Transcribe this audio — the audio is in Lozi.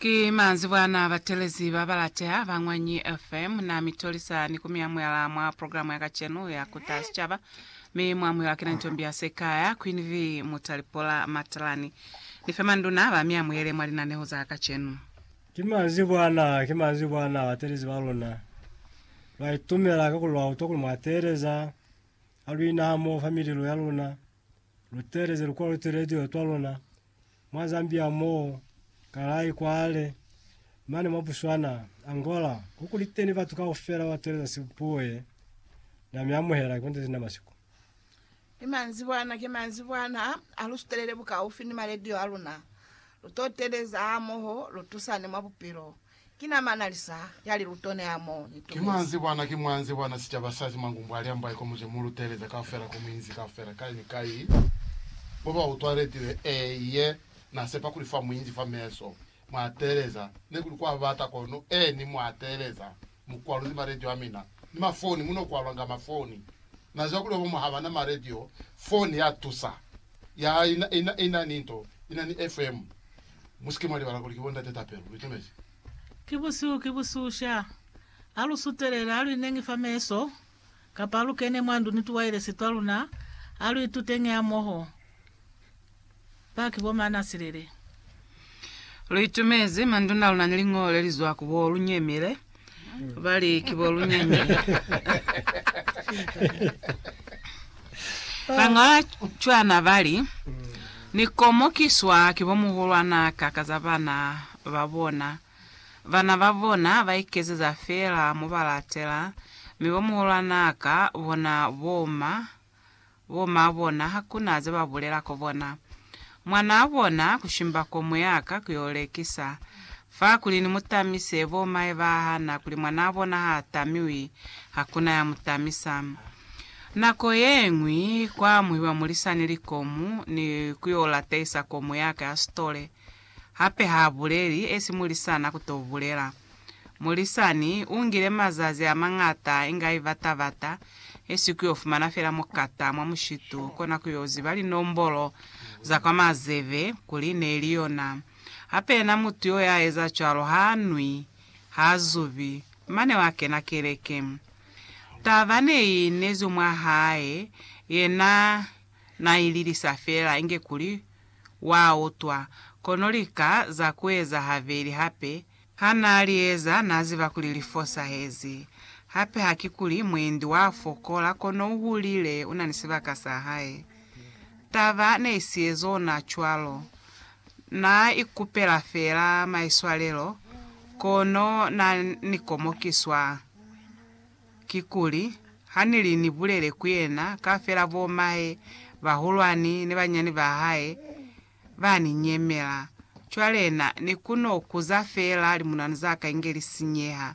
Ki manzibwana batelezi ba balateha ba Ñwanyi FM, na mi tolisa ni ku mi amuhela mwa programu ya kacenu ya Kuta Sicaba. Mi mu amuhelwa ki na Ntombi ya Sekaya, Queen V Mutalipola Matalani, ni fe manduna ba mi amuhele mwa linaneho za kacenu. Ki manzibwana, ki manzibwana batelezi ba luna ba itumela ka kuli lwa utwa kuli mwa teeleza ha lu ina hamoho fa mililo ya luna, lu teeleze lu kwalutwe radio twa luna, mwa Zambia mo, Kalay kwale, mane mwa Botswana, Angola, kukuliteni batu kaufela ba tweleza sibuye na mi amuhela ki bonte sina masiku. Ni manzibwana ki manzibwana ha lu sutelele bukaufi ni maledio a luna, lu to teleza hamoho, lu tusane mwa bupilo. Ki na mana lisa ya liluto ne a mo ni Ki mwa nzi bwana, ki mwa nzi bwana sicaba sa Simangu mbwa li ambaye ko muze mu lu teeleza kaufela ko muinzi kaufela kai ni kai, bo ba utwa retile e ye, na sepa kuli fa muinzi fa meso mwa teeleza, ne kuli kwa bata kono e ni mwa teeleza mu kwaluzi ma radio a mina, ni ma foni mu no kwalwanga ma foni. Na ziba kuli obo mwa haba na ma radio, foni ya tusa, ya ina, ina, ina ni nto, ina ni FM. Musike mwa libala kuli ki bo ndate tapelo. Lu itemezi. Ki busihu, ki busihu sha. Ha lu sutelela, ha lu inengi fa meso, kapa ha lu kene mwa ndu ni tuwailesi twa luna, ha lu ituteñi hamoho. Ba ki bo Maanasilele. Lu itemezi, manduna a luna ni liñolo le li zwa ku bo Lunyemile. Bali, Ki bo lunyanya. Bañola cwana bali, Ni komokiswa ki bo muhulwana ka ka za bana ba bona. Bana ba bona ba ikezeza fela mo ba latela, mi bo muhulwana ka bona bo ma Bo maa bona hakuna ze ba bulela ko bona. Mwanaa bona kushimba ko muyaka ku yo lekisa. Fa kuli ni mu tamise, bo mahe ba hana kuli mwanaa bona ha tamiwi, hakuna ya mu tamisa. Nako yeñwi kwa amuhiwa mulisani likomu ni ku yo latehisa ko muyaka ya sitole. Hape ha buleli esi mulisana ku to bulela. Mulisani u ngile mazazi a mañata inga i bata-bata, esi ku yo fumana fela mukata mwa mushitu, kona ku yo ziba linombolo za kwa mazebe kuli ne li yona. Hape yena mutu yo ya eza cwalo ha nwi, ha zubi, mane wa kena keleke. Taba ne i inezi mwa hae, yena na i lilisa fela inge kuli Wa utwa. Kono lika za kueza habeli hape. Ha naa li eza, naa ziba kuli li fosahezi. Hape hakikuli mwendi wa fokola, kono u hulile, una ni sibaka sa hae. Taba ne i siezona cwalo. Naa ikupela feela maiswalelo, kono naa ni komokiswa. Kikuli, ha ni li ni bulele ku yena, kaufela bo mahe bahulwani ni banyani ba hae ba ni nyemela. Cwale na, ni ku no kuza feela limunanu za ka inge li sinyeha.